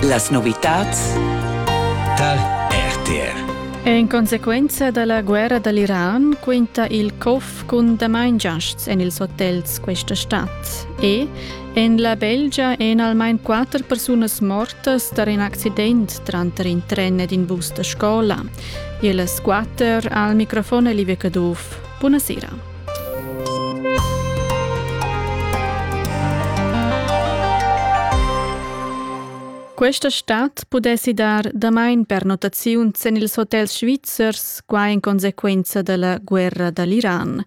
Las novitads tar RTR. En consequenza da la guerra da l'Iran quinta il cof cun damain giasts en ils hotels questa stad. E en la Belgia èn almain quatter persunas mortas tar in accident tranter in tren ed in bus da scola. Ellas quatter al microfon Olivia Caduff. Buonasera. Questa stad pudessi dar damain pernottaziun sin ils hotels svizzers, quai in consequenza da la guerra da l'Iran.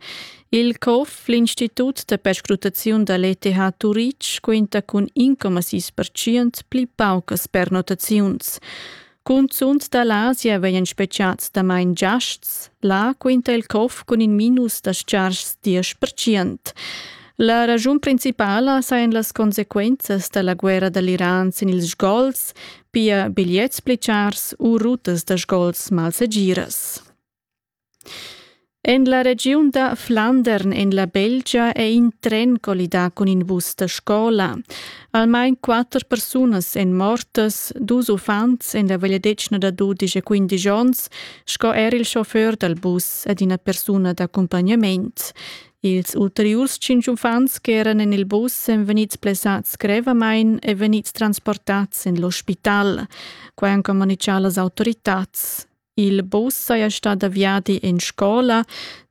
Il COF, l'Institut da perscrutaziun da l'ETH Turitg, quinta cun in 6% pli paucas pernottaziuns. Cunzunt da l'Asia vegnan speziads damain giasts. Là quinta il corf cun in minus da stgarschs diesch percent. La raschun principala sajan las consequenzas da la guerra da l'Iran sin ils sgols, pia bigliets pli chars u rutas da sgols malsegiras. En la regiun da Flandern en la Belgia è in tren collidà cun in bus da scola. Almain quatter persunas èn mortas, dus uffants en la vegliadetgna da dudisch e quindisch onns sco er il chauffeur dal bus ed ina persuna d'accumpagnament. Ils ulteriurs tschintg uffants ch'eran en il bus èn vegnids blessads grevamain e vegnids transportads en l'ospital. Quai han communitgà las autoritads. Il bus saja stà da viadi en scola.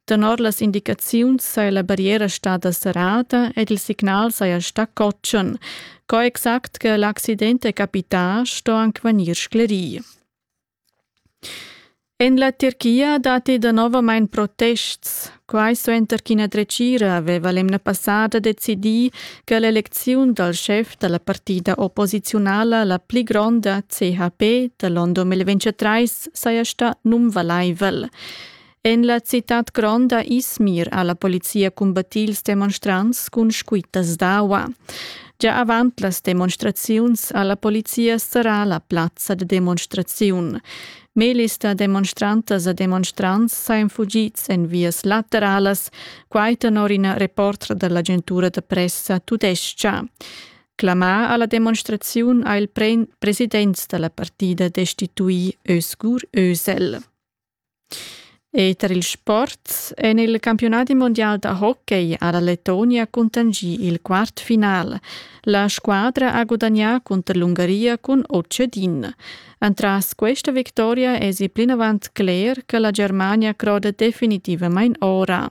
Tenor las indicaziuns saja la barriera stada serrada ed il signal saja stà cotschen. Co exact che l'accident è capità sto anc vegnir sclerì. En la Tirchia datti danovamain protests. Quai suenter ch'ina dretgira aveva l'emna passada decidì che l'elecziun dal schef da la partida opposiziunala la pli gronda CHP da l'onn 2023 saja stà nunvalaivel. En la citad gronda Izmir ha la polizia cumbattì ils demonstrants cun squittas d'aua. Gia avant las demonstraziuns ha la polizia serrà la plazza da demonstraziun. Melis da demonstrantas e demonstrants sajan fugids en vias lateralas, quai tenor ina reportra da l'agentura da pressa tudestga. Clamà a la demonstraziun ha il president da la partida destituì Özgur Özel. Eter il sport en il campiunadi mondial da hockey ha la Letonia cuntanschì il quart final. La squadra ha gudagnà cunter l'Ungaria cun Otschedin. Entras questa victoria èsi plinavant cler che la Germania croda definitivamain ora.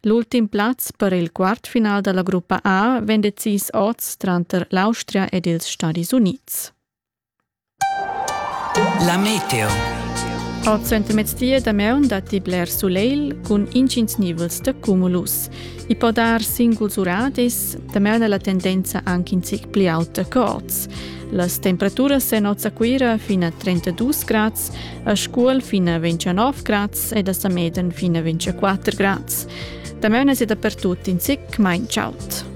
L'ultim plaz per il quartfinal da la gruppa A vegn decis oz tranter l'Austria ed ils Stadis Unids. La meteo. Al centermezdi damaun datti bler sulegl cun intgins nivels da cumulus. I po dar singuls uradis, damaun è la tendenza anche in zic pli auta corts. Las temperaturas en Nozza Cuira fin a 32 grads, a Scuol fin a 29 grads ed a Sameden fin a 24 grads. Damaun è da per tutti in zic mai chaud.